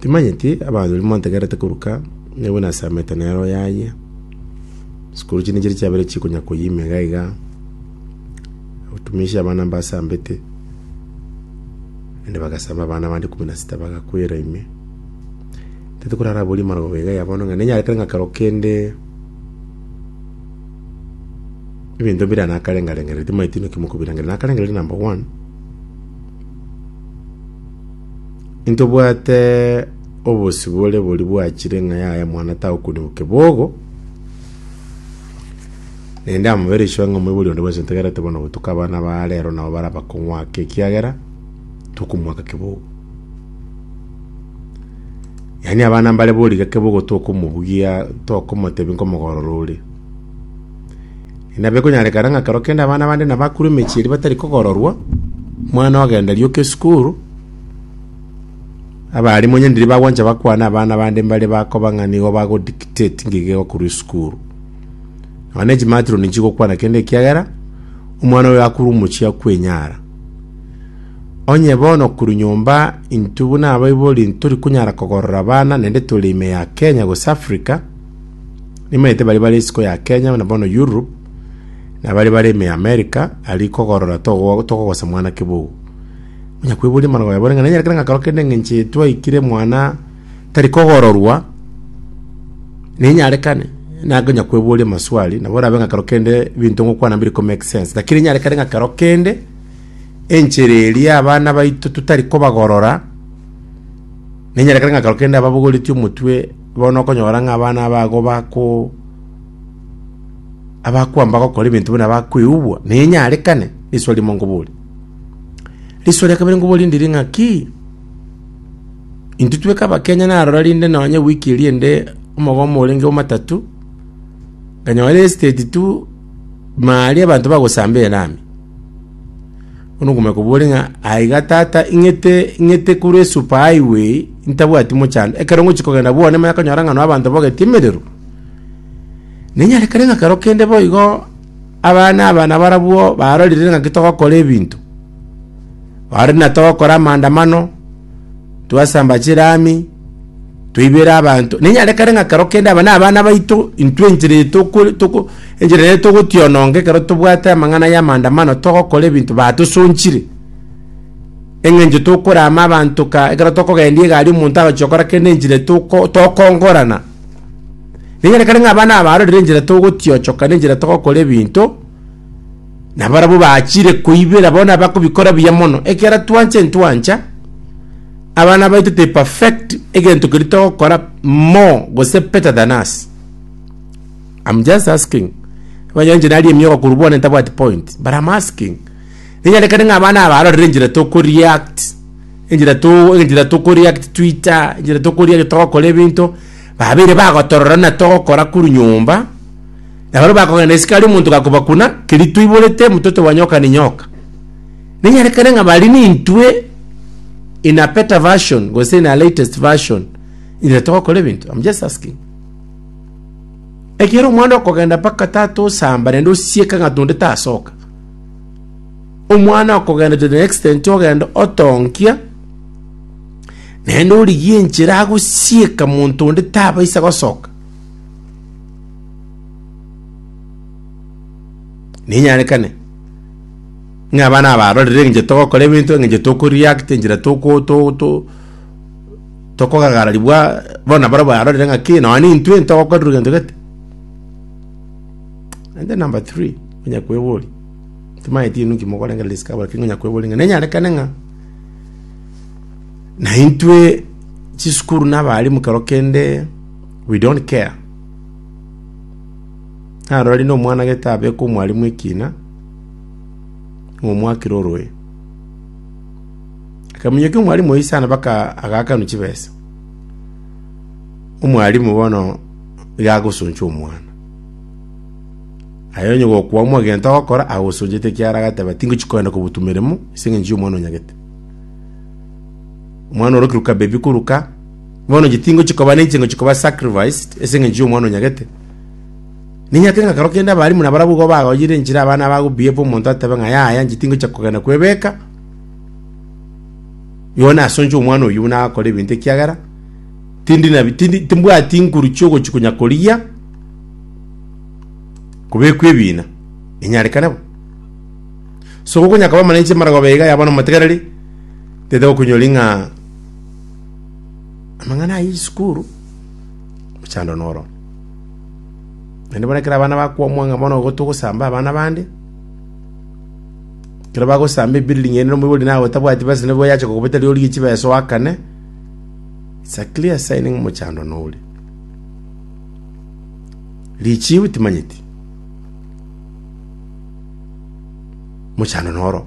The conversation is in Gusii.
Timanyeti abanto baria mwantegerete koruka, nigo buna asamete nero yaye. Sikuru chinde chiria chiabere chikonya koyima iga iga, otumisie abana mbasambete, naende bagasamba abana abande ikomi na sita bagakwera ime. Tete korara abwo rimaro bobe iga yaya bono ng'a nenyare kere ng'a kero kende ebinto mbire nakarenge-rengere, timanyeti naki mokobirangeria. Nakarengereiri number one. Intobwate obosibore boria bwachire ng'a yaya mwana tao kori bo kebogo. Naende amabere iswe ng'a moibori onde bwensi ntegerete bono gotuka abana ba rero nabo bara bakong'wake ekiagera tokomwaka kebogo. Yaani abana mbare boriga kebogo tokomobugia tokomotebia nkomogorora ore. Nabekonyarekana ng'a kero kende abana bande nabakure emechie eria batari kogororwa, omwana ogenda rioka esukuru, abaalimu onye ndiri bagwancha bakwane abana bande mbare bakoba ng'a nigo bago dictate ng'ai gegokorwa esukuru. Nonya na echimatroni nchigokwana kende ekiagera, omwana oyo akure omochie akwenyara. Onye bono korwa nyomba intwe buna abaibori ntori konyara kogorora abana naende tore ime ya Kenya gose Africa, Nimaete baria bare isiko ya Kenya na bono Europe, na baria bare ime ya America, aria kogorora togo- togogosesa mwana kibugu. Onya kweboria amang'ana oyabore ng'a nanyare kera ng'akaro kende eng'encho eye twaikire mwana tari kogororwa, nenyarekane, nakonya kweboria amaswali, nabo orabe ng'akaro kende ebinto ngokwana mbire ko make sense. Lakini enyare kere ng'akaro kende, enchera eria abana baito totari kobagorora, nenyare kere ng'akaro kende ababogoretie omotwe. Bono okonyora ng'a abana abago bako- abakwamba gokora ebinto buna bakweubwa, ninyarekane? Risoa rimo nkobori. Risoa ria kabere nkobori ndiri ng'a ki? Intwe tweka Abakenya narora rinde nonye wiki eria ende omogomo orenge omatatu, nkanyora estate tu, mari abanto bagosamba erami. Bono okomanya kobore ng'a aiga tata ing'ete ing'ete kure super highway ntabwati mochando ekero ngochi kogenda bwane manya konyora ng'a no abanto bogeti emerero nenyare kere ng'a kero kende boigo abana aba nabarabwo barorire ng'aki togokora ebinto bare natogokora amandamano. twasamba chirami, toibera abanto. Ninyare kare ng'a kero kende aba nabana baito, intwe enchera eye toko toko enchera eye togotiononga ekero tobwate amang'ana ya maandamano togokora ebinto batosonchire, eng'encho tokorama abanto ka ekero tokogendia egari omonto agochia gokora kende enchera toko tokongorana. Ninyare kare ng'a abana aba barorire enchera togotiochoka na enchera togokora ebinto. Na barabwo bachire koibera bono abakobikora buya mono, ekiagera twanche ntwancha abana baito te perfect egento keria togokora more gose better than us. I'm just asking. Abanyanche nari emiogo korwa bono ntabwati point, but I'm asking. Ninyarekane ng'a abana aba arorere enchera toko react, enchera to enchera toko react Twitter, enchera toko react togokora ebinto, babeire bagotorora na togokora korwa nyomba, Na barabwo bakogenda isiko aria omonto gakobakuna, keria toiborete, mototo wa nyoka ni nyoka. Ninyarekane ng'a bari nintwe in a better version, gose in a latest version, ire togokora ebinto. I'm just asking. Ekero omwana okogenda mpaka tata osamba naende osieka ng'a tonde tasoka. Omwana okogenda to the extent ogenda otonkia, naende origie enchera agosieka monto onde tabaisa gosoka. Ninyarekane, ng'a abana aba barorire eng'encho togokora ebinto, eng'encho toko react, enchera toko to- to- tokogagararigwa, bono nabarobwo barorire ng'a kei nonye nintwe ntogokorerwa egento gete. Naende number three, onye kweboria, timanyeti inwe nki mokorengereria discover lakini onye kweboria ng'a nenyarekane ng'a naintwe chisukuru na abalimu kero kende. We don't care. Narorire nomwana gete abeka omwalimu ekina, ng'a omwakire oroe. Akaminyokia omwalimu oyio sana baka agakanwa chibesa. Omwalimu bono iga agosoncha omwana. Aye onye gokwamwa gento ogokora agosonchete ekiara agateba tingochi kogenda kobutwa emeremo ase eng'encho y'omwana onyagete. Omwana orokire kabebi koruka. Bono inche tingochia koba ne inche ngochia koba sacrificed ase engencho y'omwana onyagete. Ninyake ng'a kero kende abarimu nabarabwo igo bagoyire enchera abana aba gobiebwa omonto atebe ng'a yaya inche tingochia kogenda kwebeka igo nase onche omwana oyio buna agakora ebinto ekiagera tindi nabi tindi timbwati inguru chiogochia konya korigia kobekwa ebina enyarekane bo. So gokonyaka koba mana inche maragoba iga yaba na omotegereri tete gokonyori ng'a Amang'ana ayio chisukuru mochando noro. Naende bono ekero abana bakwomwa ng'a bono igo togosamba abana bande, ekero bagosamba ebuilding ende omoibori naye otabwati besa nigo yache kogobeta riori rie chibesa oakane, it's a clear sign ng'a mochando noria. Richiu timanyeti, mochando noro.